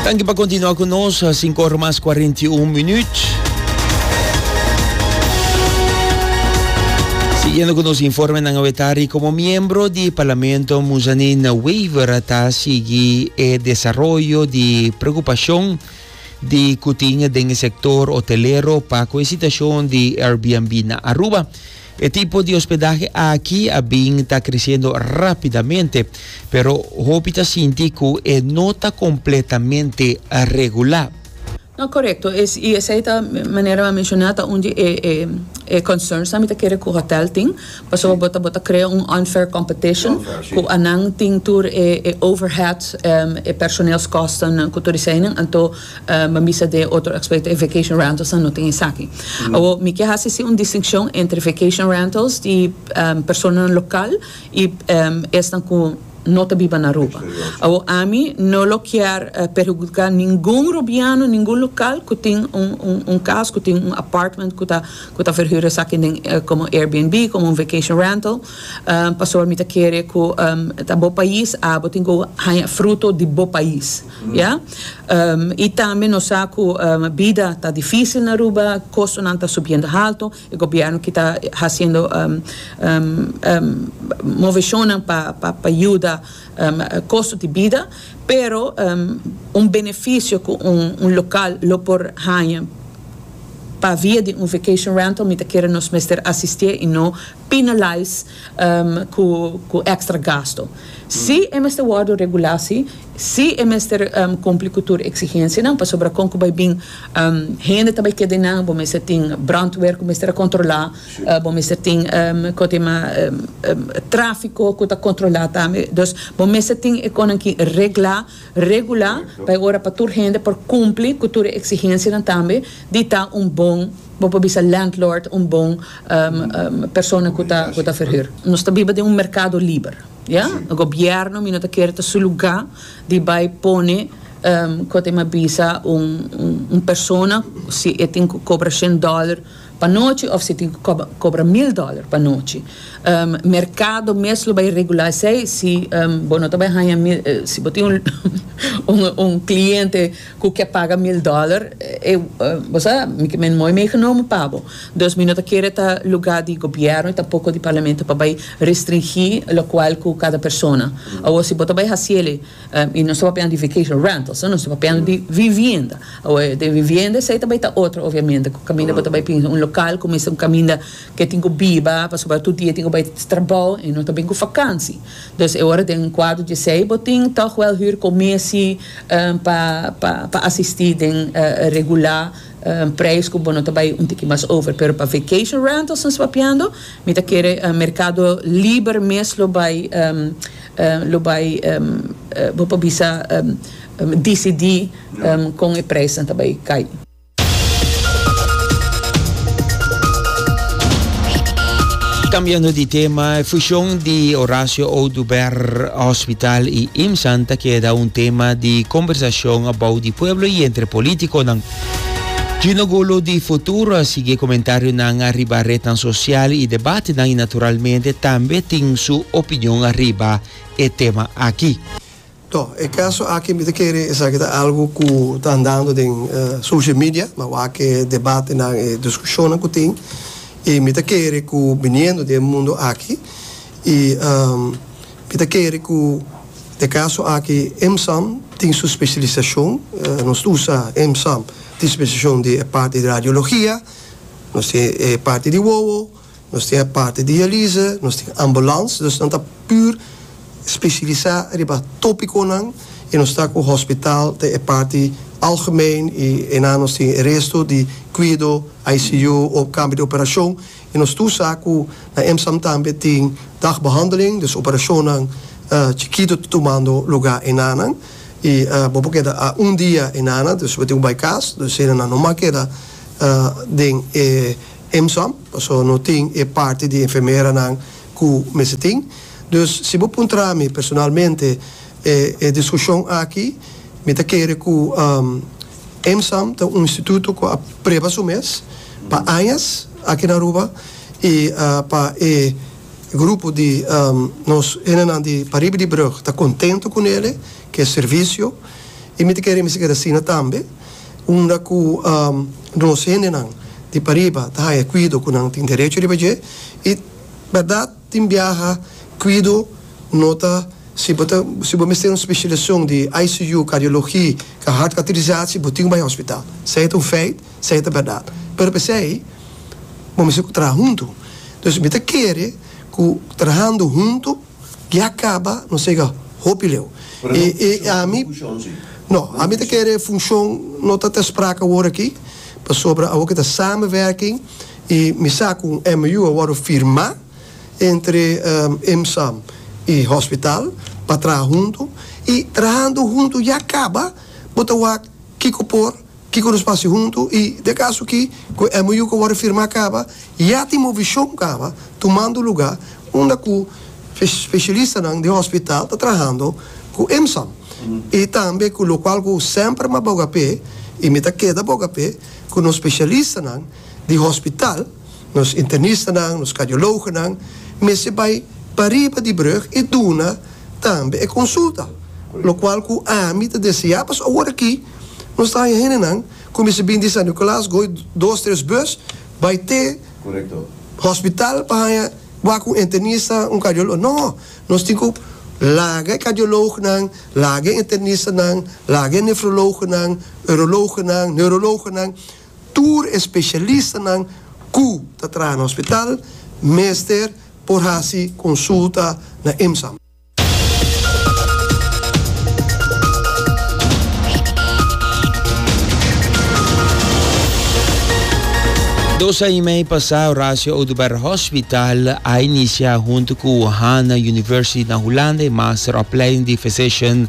Danki pa kontinua ku nos, sinku ora mas kuarenta i un minut. Siguiendo ku nos informenan awe tari komo miembro di Parlamento Muzanin Wever a ta sigui e desaroyo di preokupashon di ku tin den e sektor hotelero pa ku e situashon di Airbnb na Aruba. E tipo di hospedahe aki a bin ta creciendo rapidamente, pero hopi ta sinti cu e no ta completamente regular. No, corecto es, y esey ta, manera mi a menciona, ta un di e concerns nan mi ta kere cu hotel tin, pasobra bo ta bo ta crea un unfair competition cu anan tin tur e overhead, e personeelskostennan cu tur eseynan, anto. Mi a bisa den e otro aspecto di e vacation rentals nan no tin esaki. Awor mi kier haci si un distincion entre vacation rentals di personanan local y esnan cu no ta biba na Aruba. Awor ami no lo kier perhudica ningun Rubiano, ningun local cu tin un cas, cu tin un apartment cu ta verhuur esaki den como Airbnb, como un vacation rental, pasobra mi ta kere cu ta bo pais, abo tin cu haña fruto di bo pais. Ya. I tambe nos sa ku bida ta difísil na Aruba, kostonan ta subiendo haltu, e gobièrnu kita hasiendo moveshonnan pa yuda kosto di bida, pero un benefisio ku un lokal lo por haña pa via di un vacation rental mi ta kere nos mester asistié i no penalize cu extra gasto. Si e mester wordo regulá, si. Si e mester cumpli cu tur exigencianan, pasobra con cu bay bin hende ta bay keda eynan, bo mester tin brandweer cu mester a controlá, bo mester tin cu ta yama trafico cu ta controlá tambe. Dus bo mester tin e conan aki reglá. regulá pa e ora pa tur hende por kumpli ku tur e eksigensianan tambe di ta un bon, bo por bisa landlord, un bon persona ku ta ku ta ferhür. Nos ta biba den un merkado liber, ya. Gobièrnu mi no ta kere ta su lugá di bai pone kote mi a bisa un un persona si e tin ku kobra shen dòler, pa nochi of si tin cu cobra mil dollar pa nochi. Mercado mes lo bay regular esey si bo no ta bay haya mil si bo tin un cliente cu ke paga mil dollar e bo sa mi ke men mooi meegenomen pa bo. Dus mi no ta kere ta lugar di gobierno y tampoco di parlamento pa bay restringi locual cu cada persona. Awor si bo ta bay haciele. I nos ta papiando di vacation rentals, no? Nos ta papiando di vivienda. Awe, den vivienda esei ta bai ta otro obviamente, ku kaminda bo ta bai pinsa un lokal ku mester un kaminda ke tin ku biba, pasobra tur dia tin ku bai trabou i no ta bin ku fakansi. Dus e ora den kuadro di esei bo tin tòg wèl hür komesi pa pa pa asistí den regulá preis ku bo no ta bai un tiki mas over. Pero pa vacation rentals nos ta papiando, mi ta kere merkado liber mes lo bai lo bai bo por bisa dicidi con e prijs nan ta bai cay. Cambiando di tema, e fusion di Horacio Oduber Hospital y IMSAN ta keda un tema di conversacion abao di pueblo y entre politiconan. Gino Golo di Futuro a sigui e comentarionan ariba retnan sosial i debatenan i naturalmente tambe tin su opinion ariba e tema aki. Tò, e kaso aki mi ta kere esaki ta algu ku ta andando den social media, na wak e debatenan, e diskushonnan ku tin, i mi ta kere ku biniendo di e mundu aki i. Mi ta kere ku e kaso aki EMSAM tin su spesialisashon. Nos ta usa EMSAM tin spesialisashon di e parti di radiologia, nos tin e parti di wowo, nos tin e parti dialise, nos tin ambulans. Dus nan ta pur spesialisa riba topikonan i nos ta ku hospital den e parti algemeen i enan nos tin e resto di kuido, ICU o kambio di operashon. I nos tur sa ku na MSAM tambe tin dagbehandeling, dus operashonnan chikito ta tumando lugá enanan. I bo por keda a un dia enanan, dus bo tin ku bai kas, dus helanan no mas keda den e MSAM, pasobra no tin e parti di enfermeranan ku mester tin. Dus si bo puntra mi personalmente e diskushon aki, mi ta kere ku. Emsam ta un instituto cu a preba su mes pa añas aki na Aruba y pa e grupo di nos hendenan di pariba di brug ta contento cu nele, cu e servicio y mi ta kere mi sigue ta asina tambe unda cu nos hendenan di pariba ta haya e cuido cu nan tin derecho riba dje y berdad. Tin biaha Cuido no ta si bo ta si bo mester un specialisacion di ICU, cardiologi, ca hart cateterisatie bo tin cu bay hospital. Esey ta un feit, esey ta berdad. Pero p'esey bo mester cu traha hunto. Entonces mi ta kere cu trahando hunto ya caba nos yega hopi leu. E e ami no ami ta kere funcion no ta ta sprake awor aki pasobra awor kita samenwerking. I mi sa ku un MOU a wòrdu firmá entre IMSAM i hospital pa traha huntu. I trahando huntu ya kaba bo ta wak kiko por, kiko nos pasa huntu i di e kaso aki ku e MOU ku a wòrdu firmá kaba ya tin movishon kaba tumando lugá unda ku speshalistanan di hospital ta trahando ku IMSAM i tambe ku lokual ku semper mas bogapé i mi ta keda bogapé ku nos speshalistanan. di hospital, nos internistanan, nos kardiologonan mester bai pa riba di brug i duna tambe e konsulta. Lokual ku ami ta deseá pas awor aki nos ta haña hendenan ku mester bini di San Nikolaas, gooi dos tres bus bai te hospital pa haña wak un internista, un kardiologo. No! Nos tin ku laga e kardiologonan, laga e internistanan, laga e nefrologonan, urologonan, neurologonan. Tur e spesialistanan ku ta traha na hospital mester por hasi konsulta na IMSAM. Dos aña i mei pasá Horacio Oduber Hospital a inisiá huntu ku Hana University na Hulanda e master opleiding di physician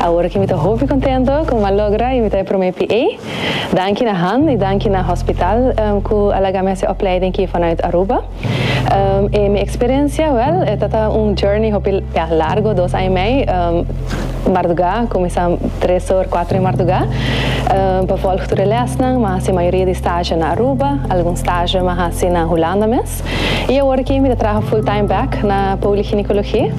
Awor aki mi ta hopi contento cu mi a logra y mi ta e prome PA. Danki na Han y danki na Hospital cu a laga mi haci e opleiding aki vanuit Aruba. E mi experiencia, wel, e ta ta un journey hopi largo, dos aña y mei marduga, cuminsa tres or, cuatro di marduga, pa volg tur e lesnan. Mi a haci mayoria di stage na Aruba, algun stage mi a haci na Hulanda mes. Gonzalez. I awor aki mi ta traha full time back na Poliginecologie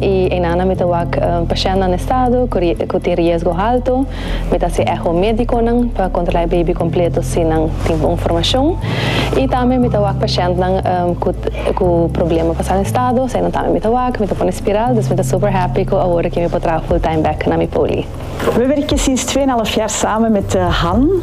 i einan mi ta wak pashèntnan na estado ku tin riesgo halto. Mi ta hasi eho médikonan pa kontrolá e baby kompleto si nan tin bon formashon. I tambe mi ta wak pashèntnan ku problema pa sal estado, eseinan tambe mi ta wak, mi ta pone spiral. Dus mi ta super happy ku awor aki mi por traha full time back na mi Poli. Mi werk e sinstfé na Lafyar samen met Han.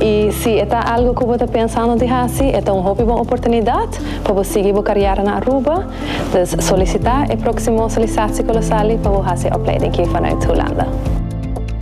I si e ta algu ku bo ta pensando di hasi, e ta un hopi bon oportunidat pa bo sigui bo karièra na Aruba. Dus solisitá e próksimo solisasikolosali pa bo hasi e opleiding aki vanuit Hulanda.